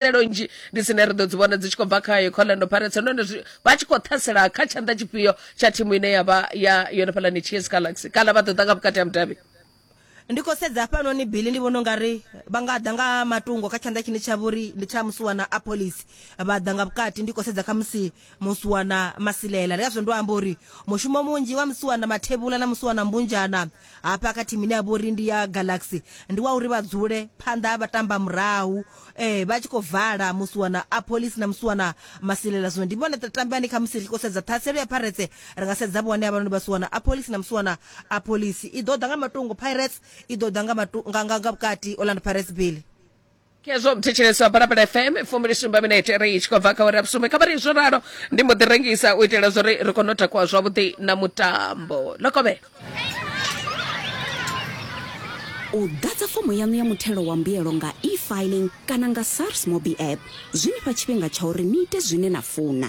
tswikelelo nnzhi ndi dzine ri ḓo dzi vhona dzi tshi khou bva kha yo colando pirates nahone vha tshi khou ṱhasela kha tshanḓa tshifhio tsha thimu ine ya vha ya yone fhalani ts galaxy kana vha ḓo ḓa nga vhukati ha mudavhi ndi khou sedza hafhanoni bili ndi vhona u nga ri vha nga ḓa nga matungo kha tshanḓa tshine tsha vhori ndi tsha musuwana a police vha ḓa nga vhukati ndi khou sedza kha musi musiwana masilela ndi kazwo ndo amba uri mushumo munzhi wa musiwana mathevhula na musiwana mbunzhana hafha kha thimu ine ya vha uri ndi ya galaxy ndi wa uri vha dzule phanḓa ha vhatamba murahu eh vha tshi khou vala musiwana a police na musiwana masilela zwino ndi vhone tamba ni kha musi ri khou sedza ṱhaselo ya pirates ri nga sedza vhone havhanoni vha siwana a police na musiwana a police i ḓo ḓa nga matungo pirates i ḓo ḓa nga matu- nga- nga- nga vhukati orlando pirates bile kezvo muthetsheleswa balabala fm fumili sumba minete ri tshi khou bva kha uri vhusumbe kha vhari zwo ralo ndi mbo ḓi rengisa u itela zwori ri kone u takuwa zwavhuḓi na mutambo lokovhe u ḓadza fomo yaṋu ya muthelo wa mbuyelo nga e-filing kana nga sars mobi app zwi ni fha tshifhinga tsha uri ni ite zwine na funa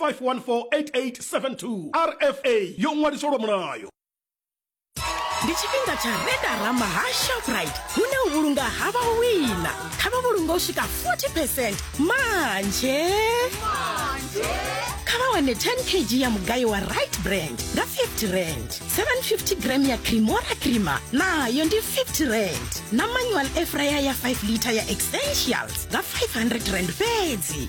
5148872 rfa yo ṅwaliswa lwa mulayo ndi tshifhinga tsha redara mahasha pride hune u vhulunga ha vha wina kha vha vhulunga u swika 40 percent manje kha vha wane 10 kg ya mugayo wa right brand nga 50 rand 750 gram ya cremora crema nayo ndi 50 rand na manual efraya ya 5 liter ya essentials nga 500 rand fhedzi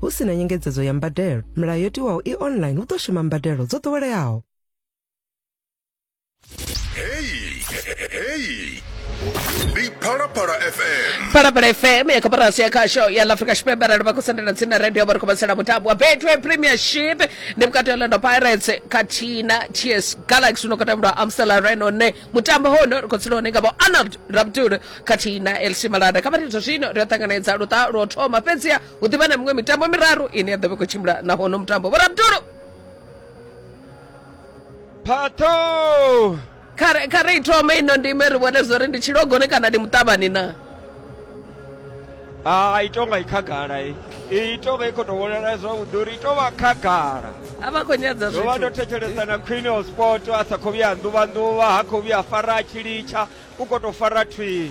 Hu si na nyengedzedzo ya mbadelo, milayo yo tiwaho i online hu ḓo shuma mbadelo dzo ḓoweleaho. Heyi, heyi. Ndi Phalaphala FM. phalaphala fm ya koporasi ya khasho ya la afrika tshipembe arali vha khou sendela tsini na radio vha ri khou vhasela mutambo wa betway premiership ndi vhukati ha orlando pirates khathihi na ts galaxy uno khou tambelwa amstel arena une mutambo hono ri khou tsila hone nga vho arnold rabdul khathihi na elc malada kha vha ri zwa zwino ri a ṱanganedza luṱa lwo thoma fhedziha hu ḓivha na miṅwe mitambo miraru ine ya ḓo vha i khou tshimbila na hono mutambo vho rabdulu phaṱho kha re- kha ri ithome ino ndime ri vhone zwo ri ndi tshilogoni kana ndi muṱavhani na hai tonga i khagala i i tonga i khou tou vhonala zwavhuḓi uri i tou vha khagala a vha khou nyadza ndo vha ndo zwithu thetshelesa na queen of sport a sa khou vhuya nḓuvha nḓuvha ha khou vhuya fara a tshi litsha u khou tou fara thwii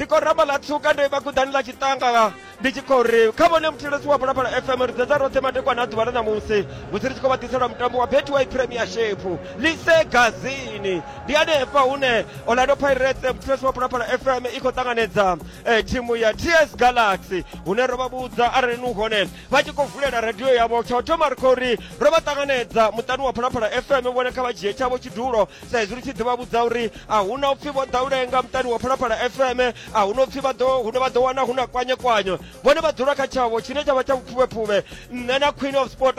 ndi khou ramba ḽa tswuka ndo ima kuḓani ḽa tshiṱanga ndi tshi khou ri kha vhone muthetshelesi wa phalaphala fm ri dzedza roṱhe madekwana a ḓuvha ḽa ṋamusi musi ri tshi khou vha ḓiselwa mutambo wa betway premiership lise gazini ndi hanefha hune orlando pirates muthetshelesi wa phalaphala fm i khou ṱanganedza eh, thimu ya ts galaxy hune ro vha vhudza arali ni hone vha tshi khou vulela radio yavho tsha u thoma ri khou ri ro vha ṱanganedza muṱani wa phalaphala fm vhone kha vha dzhie tshavho tshidulo sa izwi ri tshi ḓivha vhudza uri a hu na upfhi vho ḓa u lenga muṱani wa phalaphala fm a hu na upfhi vha ḓo hune vha ḓo wana hu na kwanye kwanye vhone vha dzula kha tshavho tshine tsha vha tsha vhupfuvhepfuvhe nṋe na queen of sport